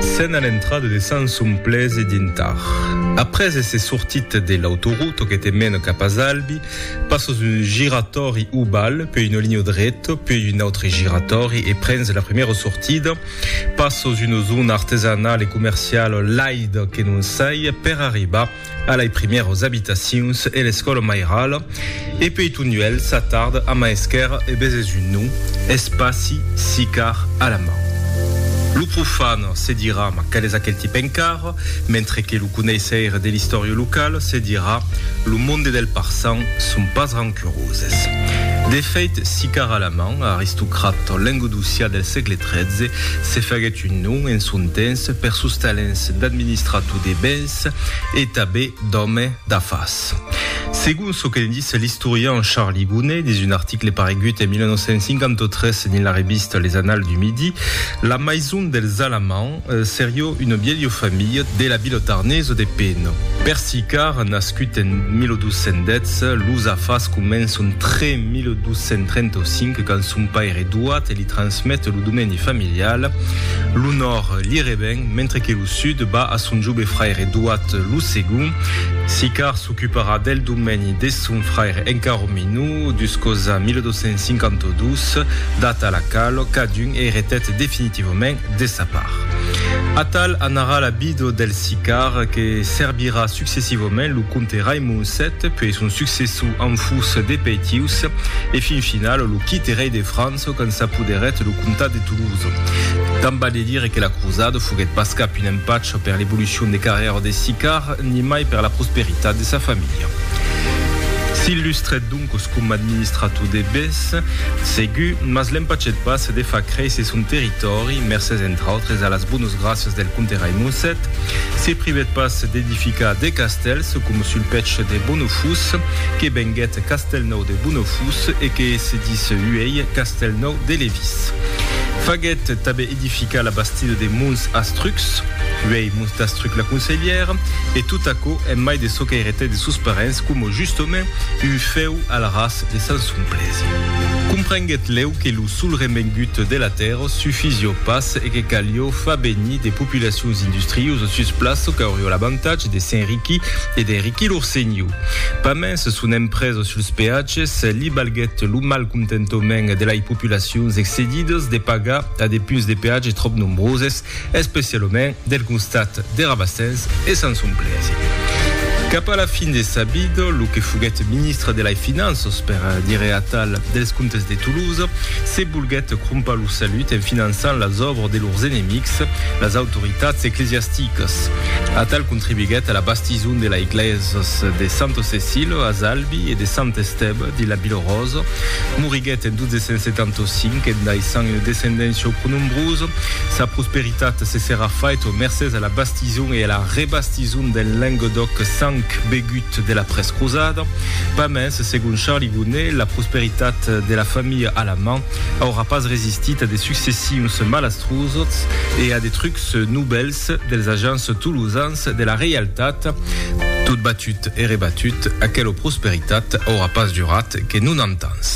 Sena l'entrada de Sanson Plese dintar. Après èsser sortit de l'autoruto que te mena cap a Zalbi, passas un giratòri oval, puèi una linha dreta, puèi un autre giratòri e prens la primièra sortida, passas una zona artesanala e comerciala laida que non saja, per arribar A lei primèros abitacions e l'escòla mairala, e pei Tonduèl s'atard a maesquèr e beses un nom, es passi sicar a la man. Lo profan se dirà, ma qual es aquel tip encar? mentre que lo coneisseire de l'istòria locala se dirà, lo monde del parçan son pas rancuroses. De fèit, sicar a la man, aristocrat lengodocià del sègle 13, se faguèt un nom en son temps per sos talents d'administrator de bens, d'artist e tabé d'òme d'afars. Segon çò que ne disse l'istorian Charlie Gounet dins un article paregut en 1953 dins la revista Les Annales du Midi, la maison dels Alamands serió una vièlha familha de la vila tarnesa de Peno. Per Sicard, nascut en 1210, los afars començon tre 1235 quand son paire Douat li transmet lo domeni familial, l'onor li reven mentre que lo Sud ba a son jobe fraire Doat lo segon. Sicar s'ocuparà del domeni de son fraire encara minor, duscosa 1252, data a la qualo cadun eretèt definitivament de sa part. Atal anarà la bido del Sicar que serbirà successivament lo comte Raimond vii, puei son successor en fus de Peitius e fin final lo quite rei de França, çò qu'en s'apoderèt lo comtat de Toulouse. Tant balhe dire que la crosada foguèt pas cap un empacha per l'evolucion de carrèra de Sicard, nimai per la prosperitat de sa familha. S'illustrèt doncos coma administrator de bes, segur, mas l'empachèt pas de far créisser son territòri, mercés entre autres a las bonas gràcias del comte Raimond vii. Se privèt pas d'edificar de castèls, coma sul pech de Bonofús, que venguèt Castelnau de Bonofus e que se dis uèi Castelnau de Levís. Faguèt tanben edificar la bastida de Mons Astrucs, uèi Mons d'Astruc la Conselhièra, e tot aquò en mai de çò qu'èretè de sos parents coma justament un fèu al ras de Sant Somplèsi. Comprenguèt lèu que lo sol remengut de la tèrra sufizió pas e que calió far venir de populacions industriosas sus plaça qu'aurió l'avantatge de s'enriquir e d'enriquir lor senhor. Pas mens son empresa suls peatges li balguèt lo malcontentament de lai populacions excedidas de pagar a de punts de peatge tròp nombroses, especialament del costat de Rabastens e Sanson-Blaise. Cap a la fin de sa vida, lo que foguèt ministre de lai Finanças, per dire atal, dels comtes de Toulouse, se volguèt crompar lo salut en finançant las òbras de lors enemics, las autoritats eclesiasticas. Atal contribuiguèt a la Tison de la Eglèsas de Santo Cecilio a Zalbi e de Sant Estèba de la Bilrosa. Moriguèt en 1275 en daissant una descendéncia au pronombrosa. Sa prosperitat se serà faita mercés a la bastison e a la rebastison del Lenguedoc sang begut de la prescrosada. Pas mens, segon Charly Gonnet, la prosperitat de la familha Alamand aurà pas resistit a de successions malastrosos e a de trucs novèls, dels agents tolosans de la reialtat, tot batut e rebatut, aquela prosperitat aurà pas durat que 90 ans.